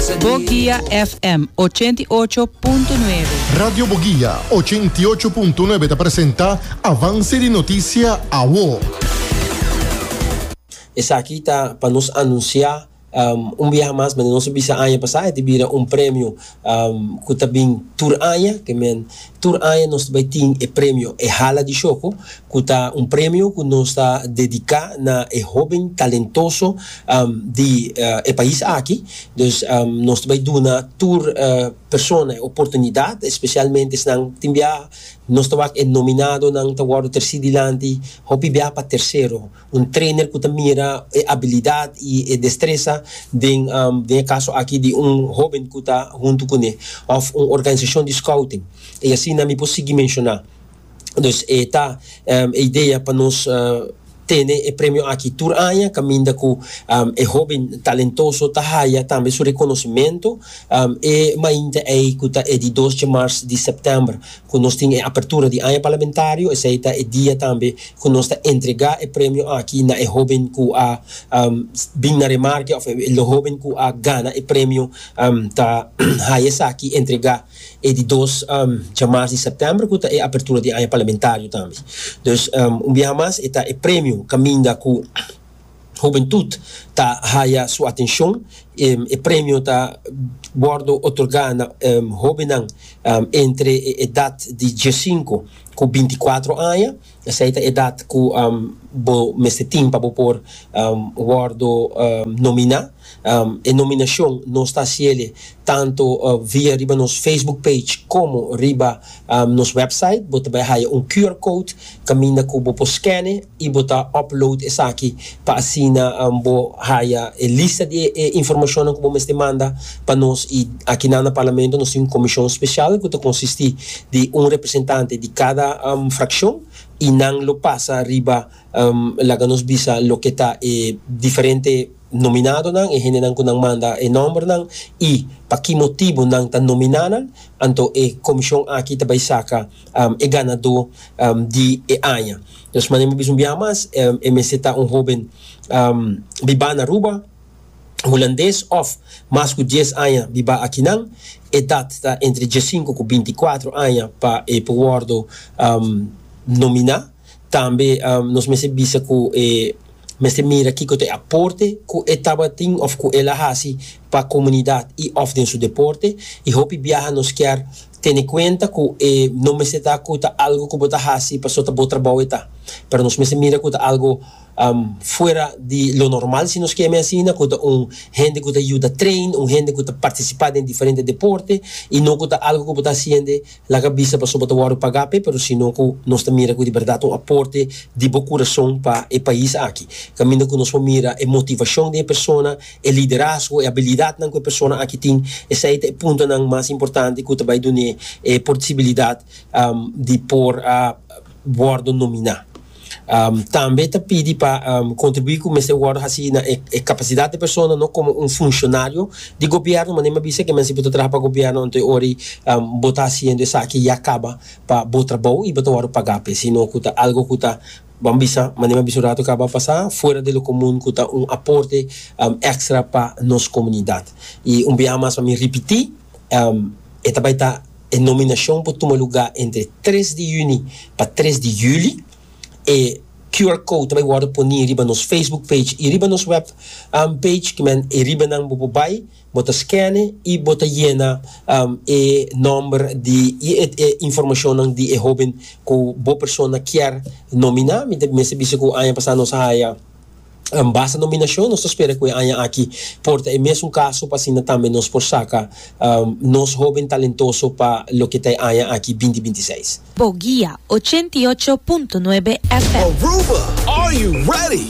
Boguia FM ochenta i ocho punto nuebe. Radio Boguia ochenta i ocho punto nuebe ta presenta avance di noticia awo. Esaki ta pa nos anuncia un biaha mas mende nos a bisa aña pasa, e ta bira un premio cu ta bin tur aña, ke men tur aña nos ta bay tin e premio e hala di shoko, cu ta un premio cu nos ta dedica na e hoben talentoso di e pais aki. Dus nos ta bay duna tur persona e oportunidad, especialmente esnan tin biaha nos ta wak e nominadonan ta wordo treci dilanti, hopi biaha pa tercero. Un trainer cu ta mira e abilidad y e destreza den den e caso aki di un hoben cu ta hunto cune of un organizacion di scouting y asina mi por sigui menciona. Dus e ta e idea pa nos tene e premio aki tur aña caminda cu e hoben talentoso ta haya tambe su reconocimento e mainta ey cu ta e di dos dje mars di september cu nos tin e apertura di aña parlamentario esey ta e dia tambe cu nos ta entrega e premio aki na e hoben cu a bin na remarke of e hoben cu a gana e premio ta haya esaki entrega E di dos djamars di septèmber ku ta e apertura di aña parlamentario tambe. Dus un biaha mas e ta e premio kaminda ku hubentut ta haya su atenshon. E premio ta wòrdu otorgá na hóbennan entre e edat di diesinko ku binti kuatro aña Esei ta edat ku bo mester tin pa bo por wòrdu nominá. E nominashon nos ta hasi el tantu via riba nos Facebook page komo riba nos wèpsait. Bo ta bai haya un QR code kaminda ku bo por skène i bo ta upload esaki pa asina bo haya e lista di e informashonnan ku bo mester manda pa nos i aki nan na Parlamento nos tin un komishon spesial ku ta konsistí di un representante di kada frakshon i nan lo pasa riba laga nos bisa loke ta e diferente nominadonan e hendenan ku nan manda e nòmbernan i pa ki motibu nan ta nominá nan anto e komishon aki ta bai saka e ganadó di e aña. Nos manera mi bisa un biaha mas e mester ta un hoben bibá na Aruba, hulandes òf mas ku dies aña bibá akinan. Edat ta entre diesinku ku binti kuatro aña pa e por wòrdu nominá. Tambe nos mester bisa ku e mester mira kiko ta e aporte ku e tabatin òf ku el a hasi pa komunidat i òf den su deporte. I hopi biaha nos kier Tene kuenta ku e no mester ta ku ta algu ku bo ta hasi pasobra bo trabou e ta, pero nos mester mira ku ta algu fuera di lo normal, si nos ke mi asina, ku ta un hende ku ta yuda train, un hende ku ta partisipá den diferente deporte i no ku ta algu ku bo ta hasiende laga bista pasobra bo ta wòrdu pagá p'e, pero sino ku nos ta mira ku di bèrdat un aporte di bo kurason pa e pais aki. Kaminda ku nos por mira e motivashon di e persona. e liderazgo, e abilidatnan ku e persona aki tin, esei ta e puntonan mas importante ku ta bai dun'é e porsibilidat di por a wòrdu nominá. Tambe ta pidi pa kontribuí ku mester wòrdu hasi na e kapasidat di e persona, no komo un funshonario di gobièrnu, manera mi a bisa ke men si bo ta traha pa gobièrnu anto ora ei bo ta hasiendo esaki ya kaba pa bo trabou i bo ta wòrdu pagá p'e, sino ku ta algu ku ta Ban bisa manera bisun rato kaba a pasa fuera di lo komun ku ta un aporte ekstra pa nos komunidat. I un biaha mas pa mi ripití, e ta bai ta e nominashon por tuma lugá entre tres di yüni pa tres di yüli. E QR code ta bai wòrdu poní riba nos Facebook page i riba nos wèb page, ki men e ribanan bo por bai. Bo ta skene i bo ta yena e nòmber di i e informashonnan di e hóben ku bo persona kier nominá. Mi ta mester bisa ku aña pasá nos a haya basta nominashon. Nos ta spera ku e aña aki por ta e mesun kaso pa asina tambe nos por saka nos hóben talentoso pa loke ta e aña aki binti binti seis. Boguia ochenta i ocho punto nuebe FM. Aruba, are you ready?